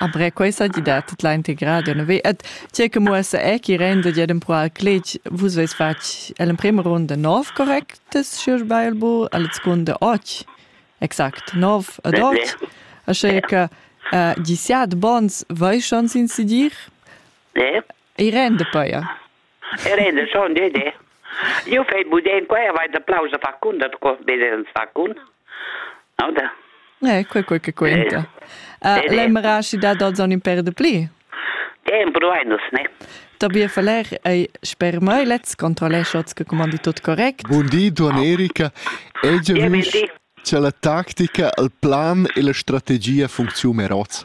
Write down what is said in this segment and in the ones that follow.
Après questa di dat la integrada nove et tie che muossa è chi renda di adem pro al clec vus veis fatg l'emprima runda nov correctes schier bei bu al seconde och exact nov ad oct asche che uh, diciat bons vai schon sin sidir e rende poi E renda schon Dede. Io fai budem qua e vai d'applaus a far cun, da co Dede ans fa cun. Oder? Eh, quei quei che quenta. Uh, Lembra si da dals on per de pli? Dem proainos, ne? Tobias Faller ei sper mei lez controlleschots che comandi tut correct. Bun di, Duan Erika. Ei già visto che la tactica, il plan e la strategia funziona meroz.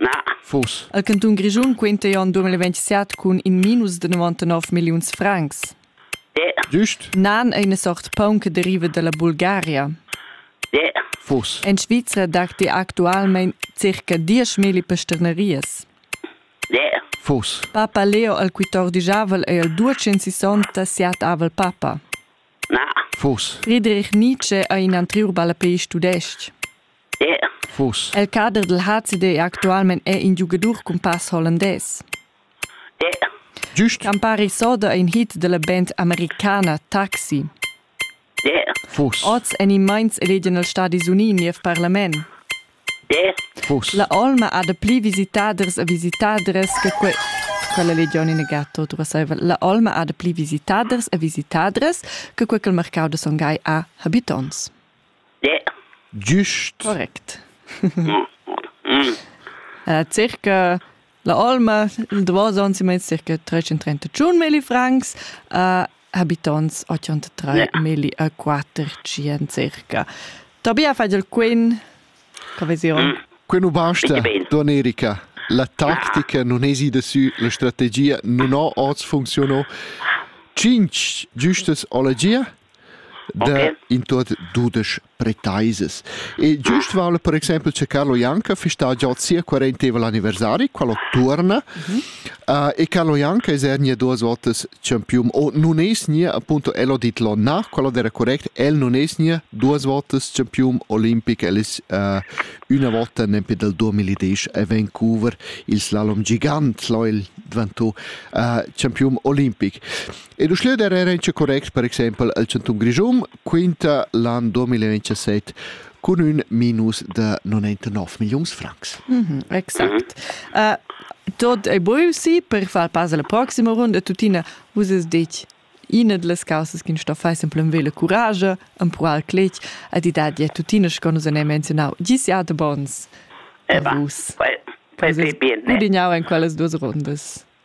Na. Vus. El cantun Grischun quinta ei onn 2027 cun in minus de 99 milliuns francs. De. Giust. Nan ei ina sort paun che deriva dalla Bulgaria. De. Vus. En Svizra datti actualmein circa dieschmilli pesternerias. De. Vus. Papa Leo al quittordijavel ei el duecentsissonta siatavel papa. Na. Vus. Friedrich Nietzsche ei in anteriur ballapeist tudestg. Vus? El cader dil HCD è actualmein è in giugadur cun pass hollandès. Giust. Campari soda è in hit della band americana Taxi. Vus? Oz en in meins elegian els Stadis Uni niev parlament. Vus? La olma ha de pli visitaders e visitadres che que quella legion in gatto dovesseva. La olma ha de pli visitaders e visitadres che quel mercau de Songhai a habitants. Giust. Correct. circa la olma il davos onns meins circa 331 milli francs uh, habitonts 83 milli a 400 circa. Tobia fa il quin coesione. Mm. Quin u basta Donerica. La tactica non esi de su, la strategia non ho oz funziono. 5 giustas ologia? da in tuot dudesch pretaisas. E giust vala per exempel che Carlo Janka fista già sia quaranteva l'anniversari, qual turna, mm -hmm. uh, e Carlo Janka es er nie duas votas champion o nun es nie appunto el ho dit lo na, qual era correct, el nun es nie duas votas champion olimpic, el es uh, una volta nempe dal 2010 a Vancouver il slalom gigant, lo il dvanto uh, champion olimpic. Ed uschia der era inscha correct per exaimpel al chantun Grischun quinta l'an 2017 cun ün minus da 99 milliuns francs. Mm -hmm, exact. Uh, tot è buio sì per far pass alla proxima runda. Tuttina, vus es detg Ina delle causes che sto fare semplicemente la courage, empruar clec, a di dati tuttina che nus abbiamo menzionato, gli siate buons. E va. Vus. Poi, poi bene. Gudignavo in quelle due runde.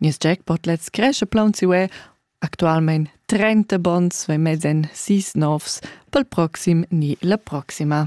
Nies jackpot lets cresce plaun siu e actualmein 30 bonds ve mez en sis novs pel proxim ni la proxima.